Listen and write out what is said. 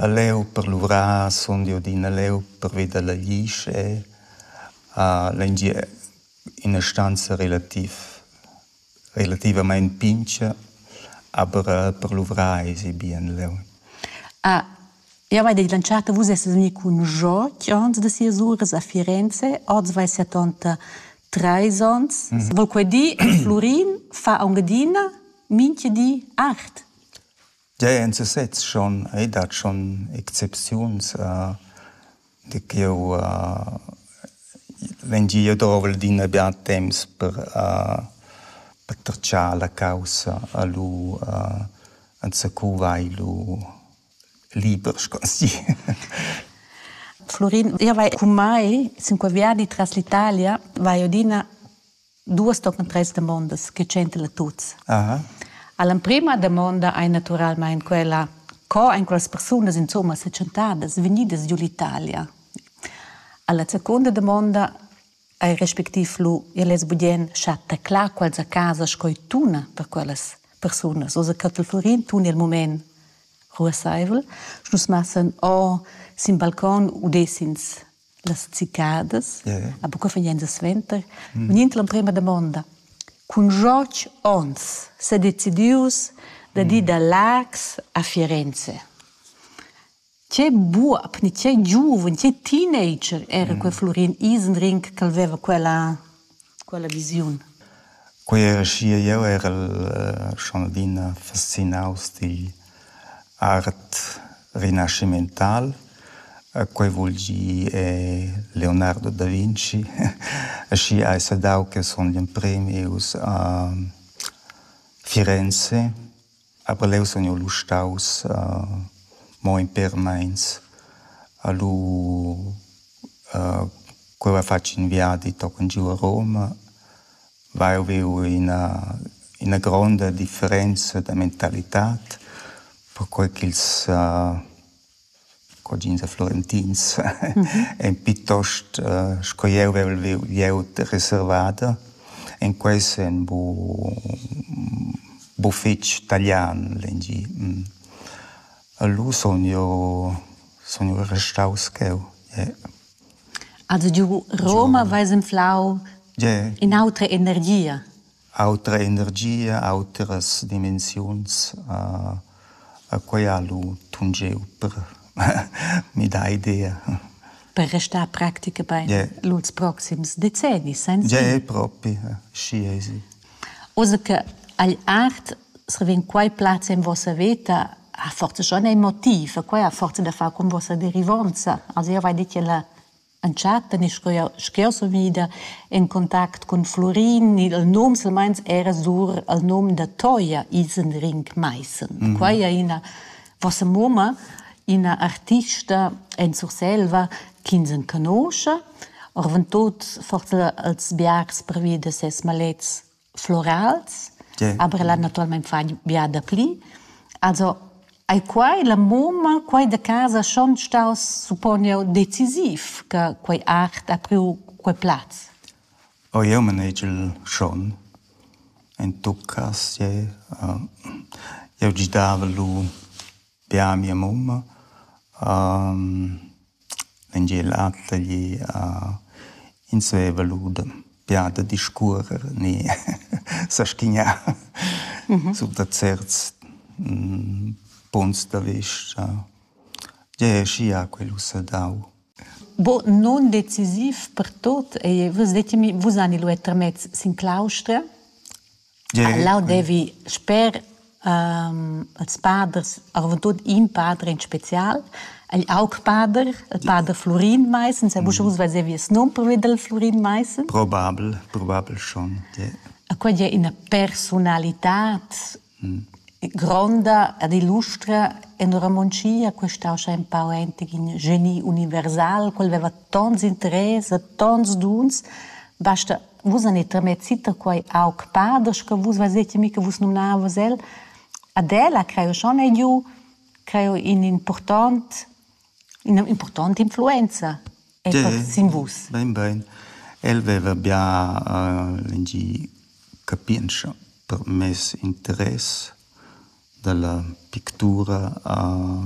a leu per luvrar sun jeu adina leu pervi dalla glisch e a l'engier ina stanza relativ relativamein pintga, aber per luvrar esi bien leu. Ah, jau hai detg l'entschatta, vus essas vegnì cun Jacques ans da sias uras a Firenze, oz vai setanta trais onns. Vol quei dir, Flurin fa aunc adina mintga di art? Gia en sesez schon ei dat schon excepziuns de ch'jeu vegni jeu dovel d'ina bien temps per pertratgar la caussa e lu enzacu vai lu liber, sco ans di. Flurin, jeu vai cu mai sin quei viadi tras l'Italia, vai adina duas tochen treis damondas che tschentela tuts. Aha. All'emprima damonda ei naturalmein quella, co ein quellas persunas insomma setschentadas vegnidas giu l'Italia. Alla seconda damonda ei respectiv lu ellas budien chatta clar quels a casa sco tuna per quellas persunas. Osa cattel Florin tun il moment ruasseivel. Nus massen o sin balcon udessins las cicadas, yeah. a buca fegnan suenter, mm. venint l'emprema damonda. Cun George Ons s'è decidius da mm. di da Lax a Firenze. Ce buob, ni ce giuven, ce teenager era mm. quel Florin Isenring che aveva quella Quella visiun. Quei era schia, jeu erel schon adina fascinaus digl art rinascimental. Quei vul gir Leonardo da Vinci. Aschia hai sa dau che sun gl'emprem ius a Firenze Aber leu sun jeu lu staus mo in pêr meins a lu cu heva fatg in viadi tochen giu a Roma, vai e viu ina ina gronda differenza da mentalitad perquei ch'ils Cuogins e Florentins ein piuttost sco jeu vevel viu glieud reservada. En quei senn bu bu fetg talian l'engi. Lu sun jeu sun jeu restaus cheu. Also giu Roma veis enflau in'autra energia. Autra energia, autras dimensiuns. E quei ha lu tungeu per midar idea. Per restar practica bein lur proxims decennis senza? Gie, propi, schi ei si. Oz che agl art vegn quei plaz en vossa veta, ha forsa schon ein motiv, e quei ha forsa da far cun vossa derivonza. Also jeu vai dir che la Entschatta ni sch'jeu sun ida en contact cun Flurin, il num silmeins era sur il num da Toja Isenring-Maissen. Mm -hmm. Quai è ina vossa mumma, ina artista en Surselva ch'ins en conosce, orventut forse als biars pervi da ses malets florals, yeah. aber ella naturalmein fa biada pli. Also ei quai la mumma, quai da casa schon staus supponiu decisiv che quei art ha priu quei plaz? O oh, jeu manegel schon. En tuccas, je. Uh, jeu gidava lu Bia a mia mumma vegniel a taglier ins veva lura bia da discuorer ni saschignar sur da certs punts da vista. Tgei ei aschia quel ussa dau? Nundecisiv per tut ei, vus detgi mi, vus hani lu era termez sin claustra? Leu devi sper ils paders arventut in pader in special, igl augpader, il pader Flurin Maissen, sa buca uss vesevi il num pervi dal Flurin Maissen. Probabel, probabel schon, ja. E quella è ina persunalitad gronda ed illustra en romontschia, questa ussa empau entig in geni universal, quel veva tons interess e tons duns, basta Vus hanit tramezit da quai aug paders che vus vezetemi che vus numnavas el. Ad el ha creu schon ei giu creu in important ina important influenza sin vus. Bein bein. El veva bia lingi capientscha per mes interess dalla pictura a